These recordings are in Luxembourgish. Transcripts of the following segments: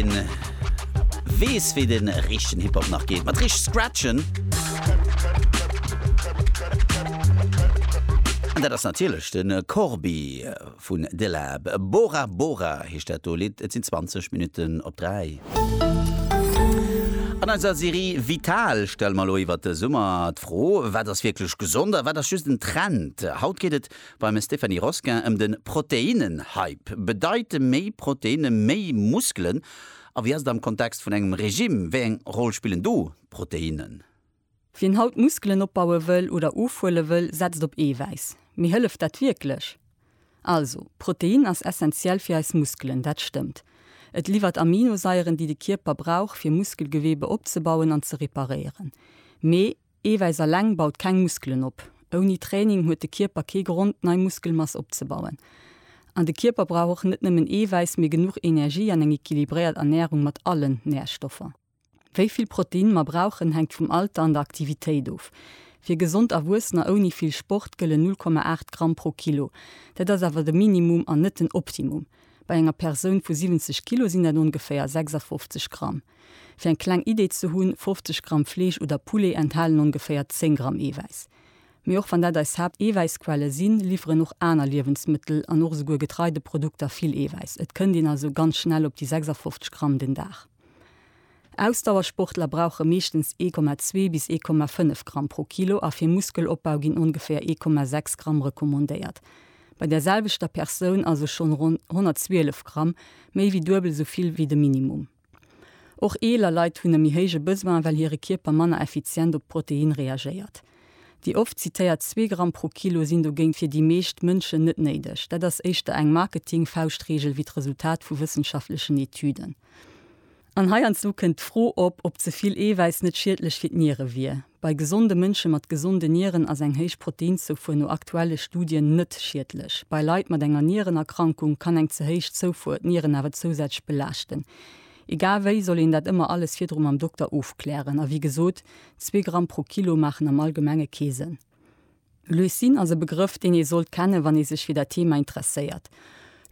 een wees wéi den richten Hip Hop nach geet mat richt scratchen an dat ass natierlech den Corbi vun De Lab. Bora Bora heescht dat do Lidd. Et sinn 20 Minutten op 3. An eiser Serie Vital stelle mer elo iwwert de Summer d'Fro, wat ass wierklech gesond a wat ass just en Trend. Haut geet et Beim Stéphanie Rosquin ëm de Proteinnen-Hype. Bedeite méi Proteine méi Muskelen? A wéi ass et am Kontext vun engem Regime? Wéi eng Roll spillen do d'Proteinnen? Wien haut Muskelen opbaue wëll oder ofhuele wëll, setzt op Eewäiss. Mee hëlleft dat wierklech? Also, Protein ass essenziell fir eis Muskelen, dat stëmmt. Et liwwert Aminosaieren, déi de Kierper brauch, fir Muskelgeweebe opzebauen an ze reparéieren. Mee. Eewäiss alleng baut keng Muskelen op. Ouni Training huet de Kierper kee Grond, nei Muskelmass opzebauen. An de Kierper brauch och net nëmmen Eewäiss, mee genuch Energie an eng equilibréiert Ernärung mat allen Närstoffer. Wéi vill Protein mer brauchen, hänkt vum Alter an der Aktivitéit of. Fir gesond Erwuessener ouni vill Sport gëllen 0,8 Gramm pro Kilo. Dat ass awer de Minimum an net den Optimum. Bei enger Persoun vu 70 Kilo sinn dat ongeféier 56 Gramm. Fir eng kleng Idee ze hunn, 50 Gramm Fleesch oder Poulet enthalen ongeféier 10 Gramm Eewäiss. Mee och wann dat eis Haapt-Eewäissquelle sinn, liwweren och aner Liewensmëttel an och esouguer Getreideprodukter vill Eewäiss. Et kënnt een also ganz schnell op déi 56 Gramm den Dag. Ausdauersportler brauche meeschtens 1,2 bis 1,5 Gramm pro Kilo a fir Muskelopbau ginn ongeféier 1,6 Gramm recommandéiert. Bei där selwechter Persoun also schonn ronn 112 Gramm, méi wéi duebel esou vill wéi de Minimum. Och eeler Leit hunn e méi héije Besoin, well hire Kierper manner effizient op d'Protein reagéiert. Déi oft zitéiert zwee Gramm pro Kilo sinn dogéint fir déi meescht Mënschen net néideg. Dat ass éischter eng Marketing-Fauschtreegel wéi d'Resultat vu wëssenschaftlechen Etüden. An heiansdo kënnt d'Fro op, ob ze vill Eewäiss net schiedlech fir d'Niere wier. Bei gesonde Mënsche mat gesonde Nieren ass eng héich Proteinzoufuer no aktuelle Studien net schiedlech. Bei Leit mat enger Nierenerkrankung kann eng ze héich Zoufuer d'Nieren awer zousätzlech belaaschten. Egal wéi soll een dat ëmmer alles virdru mam Dokter ofklären. A wéi gesot, zwee Gramm pro Kilo maachen am Allgemenge kee Sënn. Leucin ass e Begrëff, deen ee sollt kennen, wann ee sech fir dat Thema interesséiert.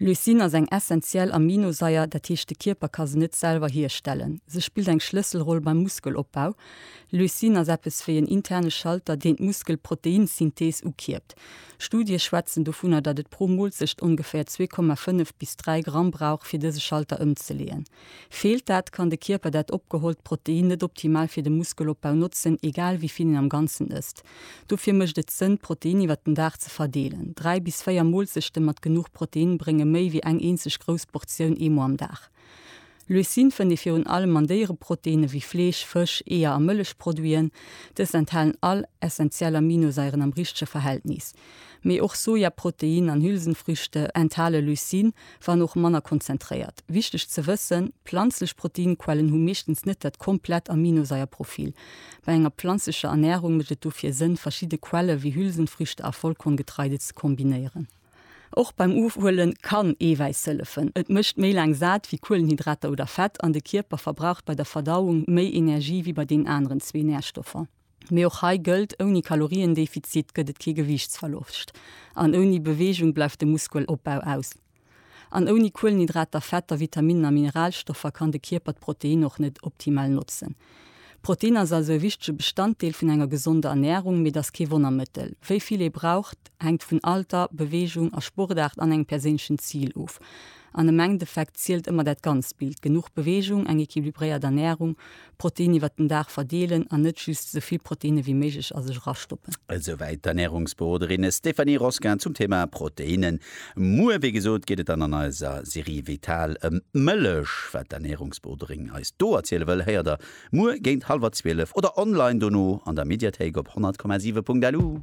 Leucin ass eng essentiell Aminosaier, dat heescht de Kierper ka se net selwer hierstellen. Se spillt eng Schlësselroll beim Muskelopbau. Leucin ass eppes wéi en interne Schalter, deen d'Muskelproteinsynthees ukierpt. Studie schwätzen dovunner, datt et pro Moolzecht ongeféier 2,5 bis 3 Gramm brauch, fir dëse Schalter ëmzeleeën. Feelt dat, kann de Kierper dat opgehollt Protein net optimal fir de Muskelopbau notzen, egal wéi vill een am Ganzen ësst. Dofir mécht et Sënn, d'Protein iwwer den Dag ze verdeelen. Dräi bis véier Moolzechte mat genuch Protein brénge méi wéi eng eenzeg grouss Portioun eemol am Dag. Leucine fënnt ee virun allem an Déiereproteine wéi Fleesch, Fësch, Eeër a Mëllechproduiten. Dës enthalen all essentiell Aminosaieren am richtege Verhältnis. Mee och Sojaprotein an Hülsenfrüchte enthale Leucine, wann och manner konzentréiert. Wichteg ze wëssen, Planzlech Proteinquellen hu meeschtens net dat komplett Aminosaier-Profil. Bei enger planzlecher Ernärung mécht et dofir Sënn, verschidde Quelle wéi Hülsenfrüchte a Vollkorngetreide ze kombinéieren. Och beim Ofhuele kann Eewäiss hëllefen. Et mécht méi laang sat wéi Kuelenhydrater oder Fett an de Kierper verbraucht bei der Verdauung méi Energie wéi bei deenen aneren zwee Närstoffer. Mee och hei gëllt, ouni Kaloriendefizit gëtt et kee Gewiichtsverloscht an ouni Beweegung bleift de Muskelopbau aus. An ouni Kuelenhydrater, Fetter, Vitaminen a Mineralstoffer kann de Kierper d'Protein och net optimal notzen. Protein ass also e wichtege Bestanddeel vun enger gesonder Ernärung, mee et ass kee Wonnermëttel. Wéi vill ee braucht, hänkt vun Alter, Beweegung a Sportaart an engem perséinlechen Zil of. An am Endeffekt zielt ëmmer dat ganzt Bild, genuch Beweegung, eng equilibréiert Ernärung, Protein iwwert den Dag verdeelen an net just esou vill Proteine wéi méiglech a sech erastoppen. Esouwäit d'Ernärungsberoderin Stéphanie Rosquin zum Thema Proteinnen. Muer, wéi gesot, geet et dann an eiser Serie Vital ëm d'Mëllech. Wat d'Ernärungsberoderin eis do erziele wëll, héiert der muer géint hallwer zwielef oder online dono an der Mediathéik op 100,7.lu.